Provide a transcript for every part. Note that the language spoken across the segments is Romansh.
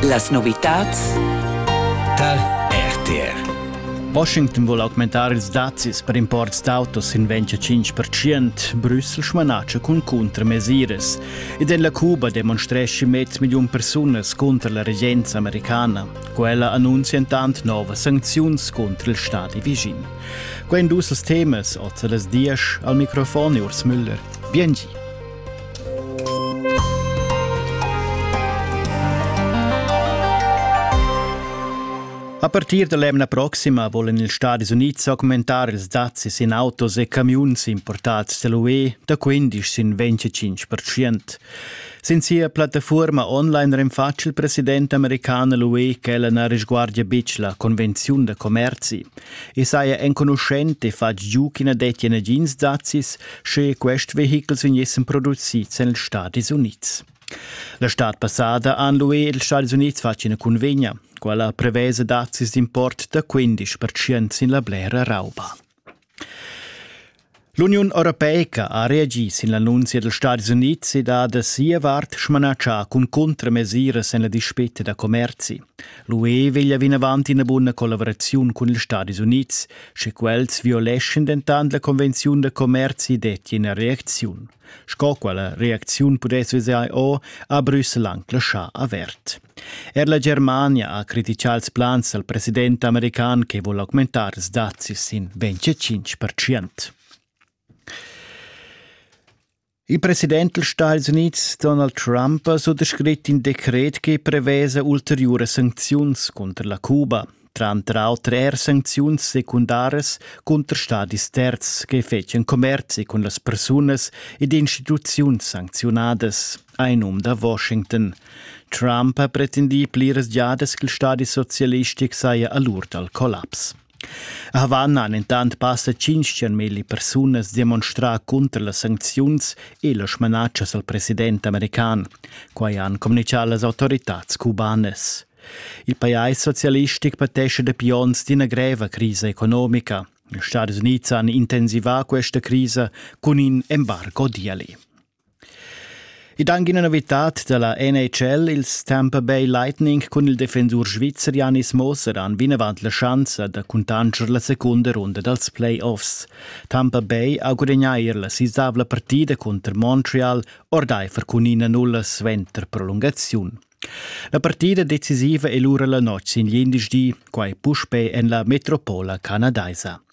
Las novitads tar RTR. Washington vuol augmentar ils dazis per imports d'autos in 25%, Brüssel smanatscha cun cuntramesiras. Ed en la Cuba demonstresci mezz million persunas contra la regenza americana. Quella annuncia intant novas sancziuns contro il stadi vicin. Quei dus els temas, oz las dias, al microfon Urs Müller. Biengi. A partir da l'emna proxima volen ils Stadis Unids augmentar ils dazzis in autos e camiuns importads da l'UE da 15 sin 25%. Sin sia plattafuorma online renfatsch il president american l'UE ch'ella na risguardia betg la convenziun da commerzi. E saja enconuschent e fatg giu ch'ina dettia nagins dazzis, Sche quest vehichels vegnessen produzids en Stadis Unids. La stad passada han l'UE e ils Stadis Unids fatg ina cunvegna, quella prevesa dazis d'import da 15% sin la blera rauba. L'Uniun Europeica ha reagi sin l'annunzia dals Stadis Unids e da da sia vart smanatschà cun contramesiras en la dispetta da commerzi. L'UE veglia vinavant ina buna collaboraziun cun ils Stadis Unids, Sche quels violeschin dentant la convenziun da commerzi detti ina reacziun, sco quella reacziun pudess vesair o a Brüssel anc laschà avert. Er la Germania ha criticà ils plans dal president american che vul augmentar ils dazis sin 25%. Il president dals Stati Unids Donald Trump ha suttascrit in decret che prevesa ulteriuras sancziuns cunter la Cuba, tranter auter er sancziuns secundaras cunter stadis terzs che fetschan commerzi cun las persunas ed instituziuns sancziunadas, ha in um da Washington. Trump ha pretendì pliras giadas ch'il stadi socialistic saja a l'ur dal collaps. Havanna han entant passa tschintg milli persunas demonstrà cunter las sancziuns e las smanatschas al president american. Quai han communitgà las autoritads cubanas. Il pajais socialistic patescha dapi onns d'ina greva crisa economica. Ils Stati Unids han intensivà questa crisa cun in embargo diali. Ed anche una novità della NHL, ils Tampa Bay Lightning cun il defensur svizzer Janis Moser han vinavant la schanza da cuntanscher la secunda runda dals playoffs. Tampa Bay ha gudagnà eir la sisavla partida cunter Montreal ordaifer cun ina nulla suenter prolungaziun. La partida decisiva è lura la notg sin glindesdi, quai puspè en la metropola canadaisa.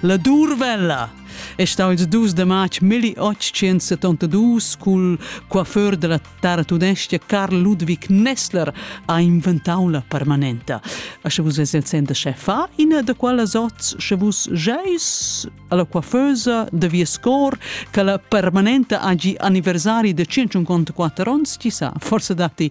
La Durvella è stà ils dus de matg 1872 cul coiffeur della tartunestja Karl Ludwig Nessler ha inventau la permanenta. A sche vus es el center chefa, ina de quellas oz, sche vus geis alla coiffeusa de vies cor che la permanenta hagi anniversari de 154 ons, ci sa, forse datti